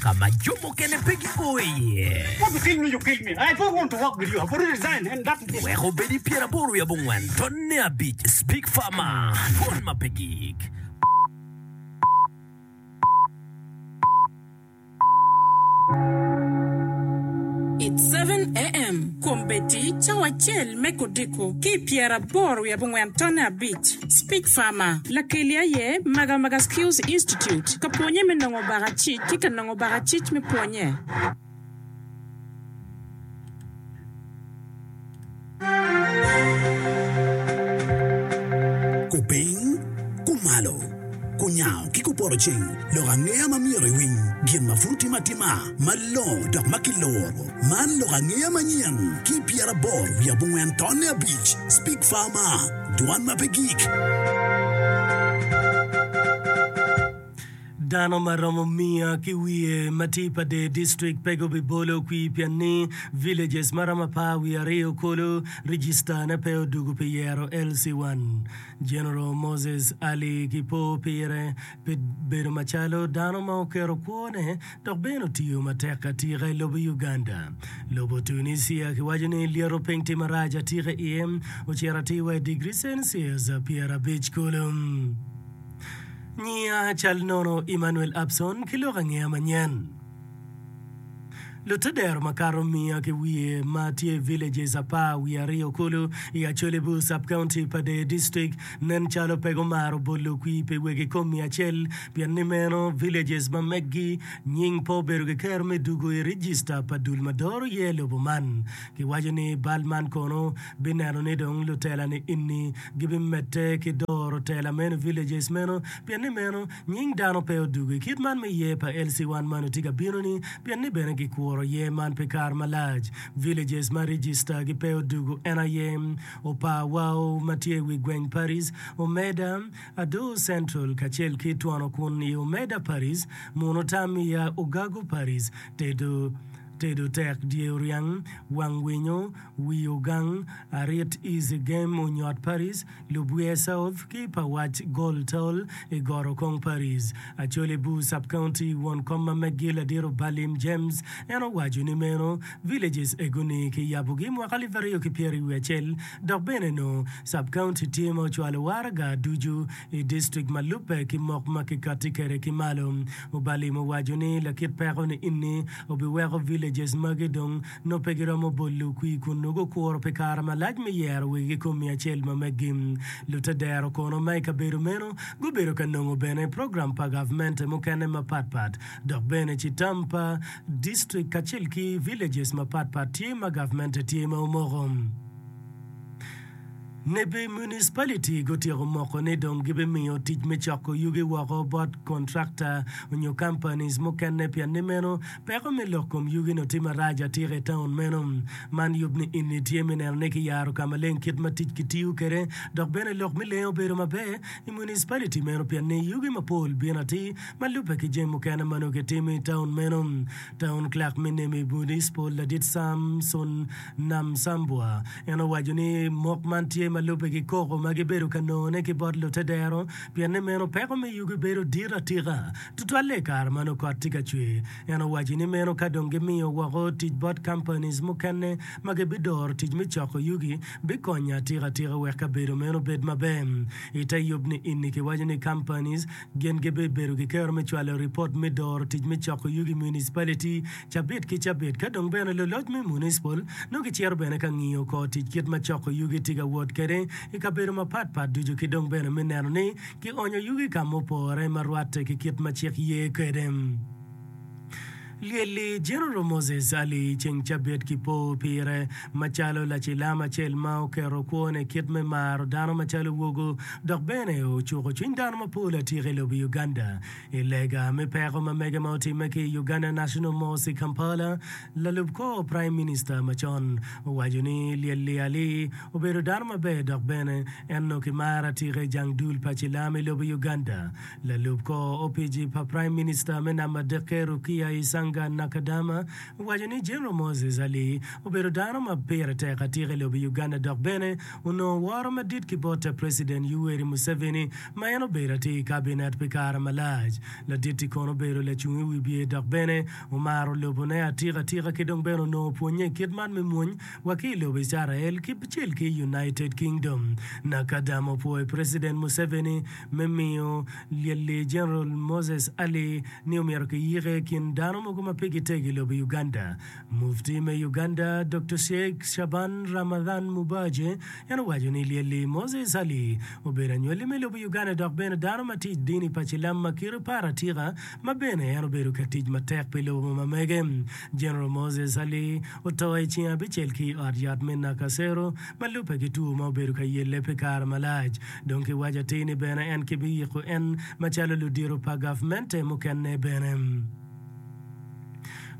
ka ma jo mukene pe gipo iye. Wek obed i pyeraboro wiye abongwen, tonne abic, Big Pharma, twon ma pe gik. It's seven AM, Kombeddi cawa acel me kodiko ki i pyeraboro wiye abongwen, tonne abic. Speech Farmer, Lakeli aye Maga Maga Skills Institute ka pwonye me nongo baka cic ki ka nongo baka cic me pwonye. Ku piny, ku malo, ku nyango ki ku poto ceng, lok angeya ma myero iwiny, gin ma pud otim atima malongo dok ma kiluro. Man lok angeya manyen ki i pyeraboro wiye abongwen tonne abic. Speech Farmer. Dwan ma pe gik. Dano ma romo miya ki wiye ma tye i Pader District pe gubibolo kwir pien ni villages ma romo apar wiye aryo kulu registane pe odwogo pi yero LC1. General Moses Ali ki po pire. pi bedo macalo dano ma oketo kwone dok bene otiyo matek atika i lobo Uganda. Lobo Tunisia kiwaco ni lyeto piny tye marac atika i iye, ocito atir wa i digri Celsius pyerabic kulu. Nyiya cal nono Emmanuel Abson ki lok angeya manyen. Lute dero makato miya ki wiye ma tye villages apar wiye aryo kulu i Acholi-bu, Sub-County pa Deyo District, nen calo pe gumaro bolo kwir pi wegi komi acel, pien ni meno villages ma meggi nying pe obedo kiketo me dugo i regista pa dul ma doro iye lobo man. Kiwaco ni bal man kono bineno ni dong lutela niini gibimedde ki doro tela meno i villages meno, pien ni meno Nying dano pe odwogo i kit man me yer pa LC wan mano tye ka bino ni pien ni bene gi kuro yer man pi kare malac. Villages ma register gi pe odwogo en aye, Opar Wao ma tye i wi gweng Paris, Omeda, Adoo Central kacel ki Twono kun i Omeda Paris, Muno Tamia, Ogago Paris, Tedo, Tedo Tek, Dye Oriang, Wang Winyo, Wi Ogang, Arit Easy Game, Onyot Paris, Lubwiye South ki pa wac Gol Tol i Goro Kong Paris. Acholi Bur Sub-County, Won kom ma Megi Ladiro Balim James en owaco ni meno villages egoni ki yabogi mwaka alip aryo ki pyeri wiye acel dok bene nongo Sub-County tye ma ocwalo waraga ducu i district ma lubbe ki mok ma ki kati kede ki malo. Obalim owaco ni lakit peko ni inni obiweko villages magi dong nongo pe giromo bot lukwir kun nongo gukuro pi kare malac me yero wigi ki kom miya acel ma meggi. Lutedero kono ma i kabedo meno gubedo ka nongo bene program pa gavmente mukene mapat pat dok bene citam pa district kacel ki villages mapat pat tye ma gavmente tye ma omoko. Nebi municipality gutyeko moko ni dong gibimiyo tic me coko yugi woko bot kontrakta onyo companies mukene pien ni meno peko me lok kom yugi no tye marac atika i town meno. Man yub ni inni tye me neno ni kiyaro ka maleng kit ma tic kitiyo kede dok bene lok me lengo bedo maber i municipality meno pien ni yugi mapol bino atir ma lube ki jami mukene ma nongo kitimo i town meno. Taun Clark me Nemi Municipal Ladit Samson Namsambwa en owaco ni mok man tye ma lubbe ki koko ma gibedo ka nongone ki bot lute dero pien ni meno peko me yugi bedo dit atika tutwalle i kare ma nongo kot tye ka cwer. En owaco ni meno ka dong gimiyo woko tic bot companies mukene ma gibidoro tic me coko yugi bikonyo atika tika wek kabedo meno obed maber. Ite yub ni inni kiwaco ni companies Gin gibibedo ki kero me cwalo ripot me doro tic me coko yugi municipality cabit ki cabit. Ka dong bene luloc me municipal nongo gicito bene ka ngiyo kor tic kit ma coko yugi tye ka wot kwede i kabedo mapat pat ducu ki dong bene me neno ni kionyo yugi ka ma opore ma rwatte ki kit ma cik ye kwede. Lyelli, General Moses Ali ceng cabit ki po pire macalo lacilam acel ma oketo kwone kit me maro dano macalo wogo dok bene ocuko cwiny dano mapol atika i lobo Uganda. I lega me peko ma mege ma otimme ki i Uganda National Mosque i Kampala, lalub kor Prime Minister macon owaco ni Lyelli Ali obedo dano maber dok bene en onongo kimaro atika i jang dul pa cilam i lobo Uganda. Lalub kor opici pa Prime Minister me Nam Madeke Rukia Isanga Nakadama owaco ni General Moses Ali obedo dano ma pire tek atika i lobo Uganda dok bene onongo woro madit ki bot te President Yoweri Museveni ma en obedo atir i Cabinet pi kare malac. Ladit-ti kono obedo lacung i wibye dok bene omaro lobone atika tika ki dong bene onongo pwonye i kit man me mwony wa ki i lobo Icarael kibcel ki United Kingdom. Nakadama opwoyo President Museveni me miyo Lyelli Jeneral Moses Ali ni omyero kiyike i kin dano mogo ma pigi tek i lobo Uganda. Mufti me Uganda, Doktor Sheik Shaban Ramadhan Mubaje, en owaco ni Lyelli Moses Ali obedo anywalli me lobo Uganda dok bene dano ma tic dini pa cilam ma kite par atika ma bene en obedo ka tic matek pi lobo ma mege. Jeneral Moses Ali oto i ceng abicel ki i ot yat me Nakasero ma lubbe ki two ma obedo ka yelle pi kare malac. Dong ki waco atir ni bene en ki biyiko en macalo ludito pa gavmente mukene bene.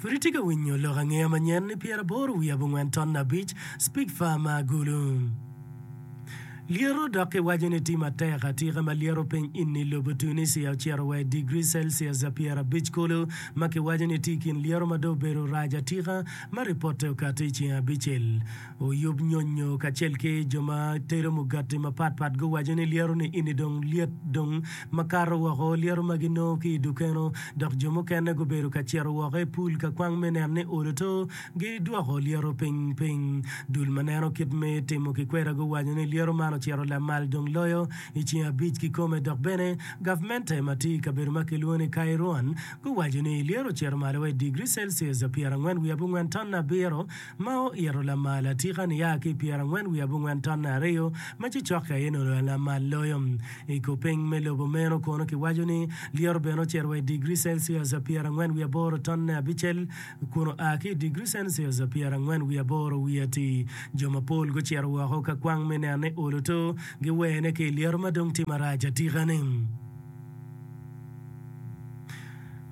Pud itye ka winyo lok angeya manyen ni pyeraboro wiye abongwen ton abic, Speak Far ma agulu. Lyeto dok ki waco ni tye matek atika ma lyeto piny inni lobo Tunisia ocito wa i digri Celsius pyerabic kulu ma ki waco ni tye ikin lyeto ma dong obedo rac atika ma ripote okato i ceng abicel Oyub nyonyo kacel ki jo ma tero mugati mapat pat guwaco ni lyeto ni ini dong lyet dong makato woko lyeto ma ginongo ki i dukeno dok jo mukene gubedo ka cito woko i pul ka kwang me neno ni olo to gi dwoko lyeto piny piny. Dul ma neno kit me timo kikweda guwaco ni lyeto man ocito lamal dong loyo i ceng abic kikome dok bene gavmente ma tye i kabedo ma kilwongo ni Kairouan guwaco ni lyeto ocito malo wa i digri Celsius pyerangwen wiye abongwen ton abiro ma oito lamal atika niya ki i pyerangwen wiye abongwen tonne aryo, ma cocokke aye nongo en lamal loyo. I kor piny me lobo meno kono kiwaco ni lyet obene ocito wa i digri celcius pyerangwen wiye aboro tonne abicel kun oa ki i digri celcius pyerangwen wiye aboro wiye atir. Jo mapol gucito woko ka kwang me neno ni olo to giwene ki i lyeto ma dong tye marac atika-ni.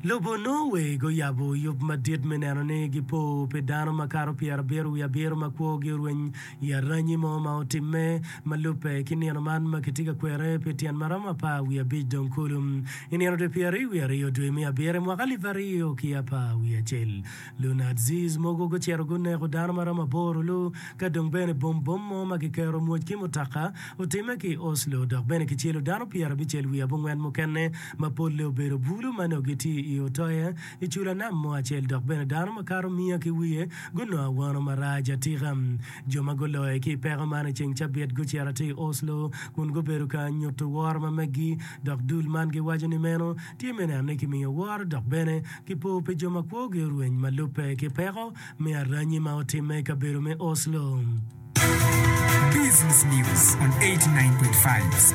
Lobo onongo weg oyabo yub madit me neno ni gipo pi dano makato pyerabiro wiye abiro ma kwogi orweny i aranyi mo ma otimme. Ma lubbe ki nino man ma kitye ka kwere pi tyen ma romo apar wiye abic dong kulu. I nino dwe pyeraryo wiye aryo dwe me abiro i mwaka alip aryo ki apar wiye acel, Lunadziz mogo gucito guneko dano ma romo aboro lu ka dong bene bom bom mo ma kikero mwoc ki mutoka otimme ki i Oslo dok bene kicelo dano pyerabicel wiye abongwen mukene ma polle obedo bulu ma nongo gitye i Utoya i cula nam mo acel dok bene dano makato miya ki wiye gunongo awano marac atika. Jo ma guloyo ki i peko man i ceng cabit gucito atir i Oslo kun gubedo ka nyuto woro ma meggi dok dul man giwaco ni meno tye me neno ni kimiyo woro dok bene kipo pi jo ma kwogi orweny ma lubbe ki peko me aranyi ma otimme i kabedo me Oslo. Business News on 89.5.